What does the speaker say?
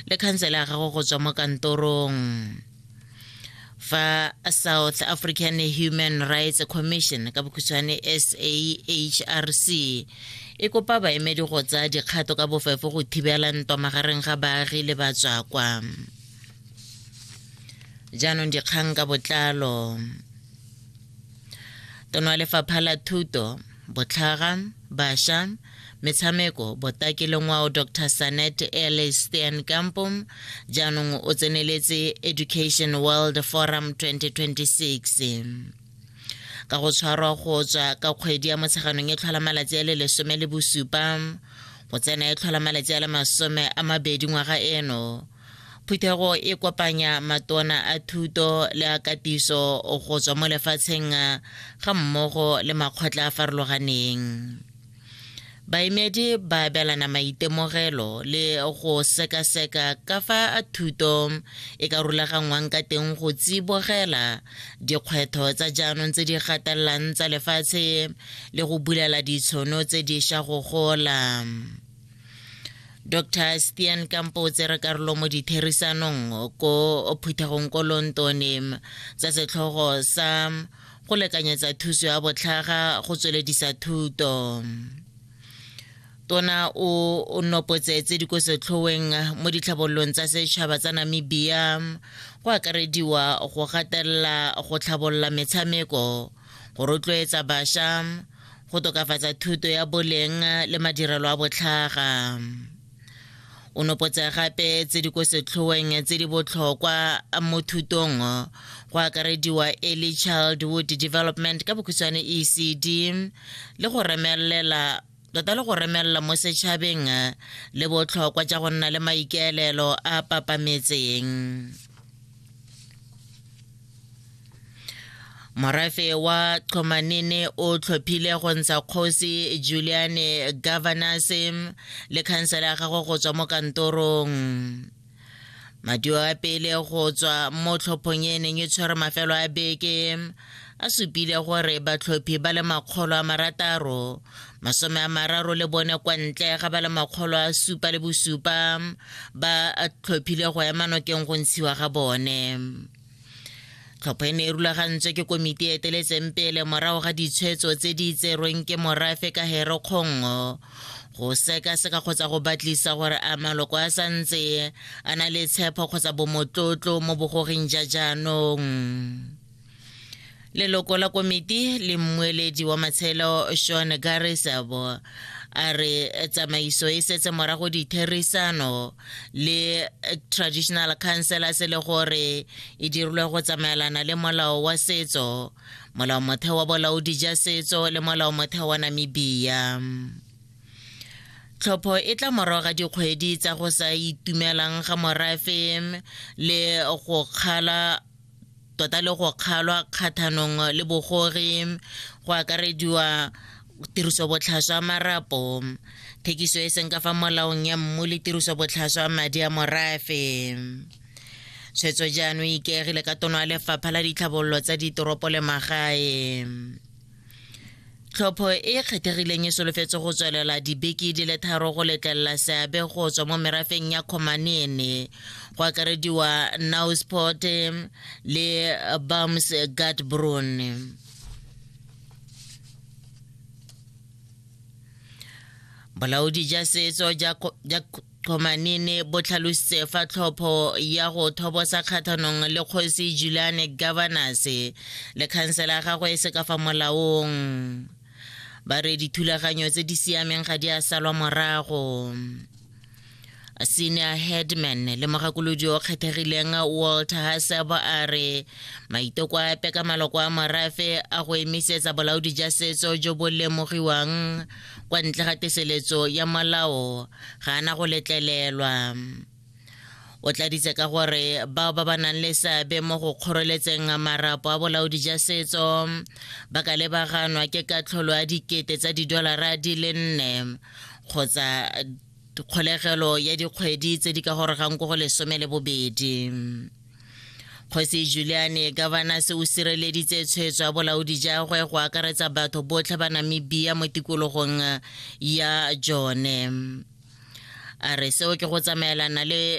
le khansele ya gago go tswa mo kantorong fa south african human rights commission ka bokhutshwane sahrc e kopa baemedi go tsaya dikgato ka bofefo go thibela ntwa magareng ga baagi le batswakwa jaanong dikgang ka botlalo tono wa lefapha la thuto Botlhaga, Basha, Metshameko, Botaki le Ngwao Dr Sanet Ele Steenkampo jaanong o tseneletse Education World Forum 2026 ka go tshwarwa go tswa ka kgwedi ya motsheganong e tlhola malatsi a le lesome le bosupa go tsena e tlhola malatsi a le masome a mabedi ngwaga eno Phuthego e kopanya matona a thuto le a katiso go tswa mo lefatsheng ga mmogo le makgotla a farologaneng. Baemedi ba abelana maitemogelo le go sekaseka ka fa thuto e ka rulaganngwang ka teng go tsibogela dikgwetho tsa jaanong tse di gatelelang tsa lefatshe le go bulela ditshono tse diša go gola. dr stian kampo o tsere karolo mo ditherisanong ko phuthegong ko lontonem tsa setlhogo sa go lekanyetsa thuso ya botlhaga go tsweledisa thuto tona o nopotse tse di ko setlhoweng mo ditlhabololong tsa setšhaba tsa namibia go akarediwa go gatelela go tlhabolola metshameko go rotloetsa bašwa go tokafatsa thuto ya boleng le madirelo a botlhaga o nopotsa gape tse di ko setlhoeng tse di botlhokwa mo thutong go akarediwa early childhood development ka bokhutshwane ecd le go remelela tota le go remelela mo setšhabeng le botlhokwa ja go nna le maikaelelo a papametseng morafe wa tlhomanene o tlhophile go ntsha kgosi juliane governors le khansela ya gagwe go tswa mo kantorong madio a pele go tswa mo tlhophong e neng e tshwere mafelo a beke a supile gore batlhophi ba le makgolo a marataro masome a mararo le bone kwa ntle ga ba le makgolo a supa le bosupa ba tlhophile go ema nokeng go ntshiwa ga bone tlhopho e ne e rulagantswe ke komiti e eteletseng pele morago ga ditshwetso tse di tserweng ke morafe ka hero kgongo go sekaseka kgotsa go batlisa gore a maloko a sa ntse a na le tshepho kgotsa bomotlotlo mo bogoging ja jaanong leloko la komiti le mmueledi wa matshelo sean garisabo a re tsamaiso e setse morago ditherisano le traditional councilors le gore e dirilwe go tsamaelana le molao wa setso molao motheo wa bolaodi ja setso le molao motheo wa namibia tlhopho e tla morago ga dikgwedi tsa go sa itumelang ga morafe le go kgala tota le go kgalwa kgathanong le bogore go akarediwa tirisobotlhaswa ya marapo thekiso e seng ka fa molaong ya mmu le tirisobotlhaswa ya madi a morafe tshwetso jaanong ikaegile ka tono ya lefapha la ditlhabololo tsa ditoropo le magae tlhopho e kgethegileng e solofetse go tswelela dibeke di le tharo go letlelela seabe go tswa mo merafeng ya khomanene go akarediwa nausport le bams gatbrun bolaodi ja setso ja Qomanene bo tlhalositse fa tlhopho ya go thobosa kgathanong le kgosi Juliane Governors le khansela ya gagwe e se ka fa molaong ba re dithulaganyo tse di siameng ga di a salwa morago senior headman le mogakolodi o kgethegileng walter hasebo a re maiteko a epe ka maloko a morafe a go emisetsa bolaodi ja setso jo bo lemogiwang kwa ntle ga teseletso ya molao ga ana go letlelelwa o tladitse ka gore bao ba ba nang le seabe mo go kgoreletseng marapo a bolaodi ja setso ba ka lebaganwa ke katlholo ya dikete tsa didolara di le nne kgotsa kgolegelo ya dikgwedi tse di ka gorogang ko go lesome le bobedi kgosi juliane gavanase o sireleditse tshwetso ya bolaodi jagwe go akaretsa batho botlhe ba namibia mo tikologong ya jone a re seo ke go tsamaelana le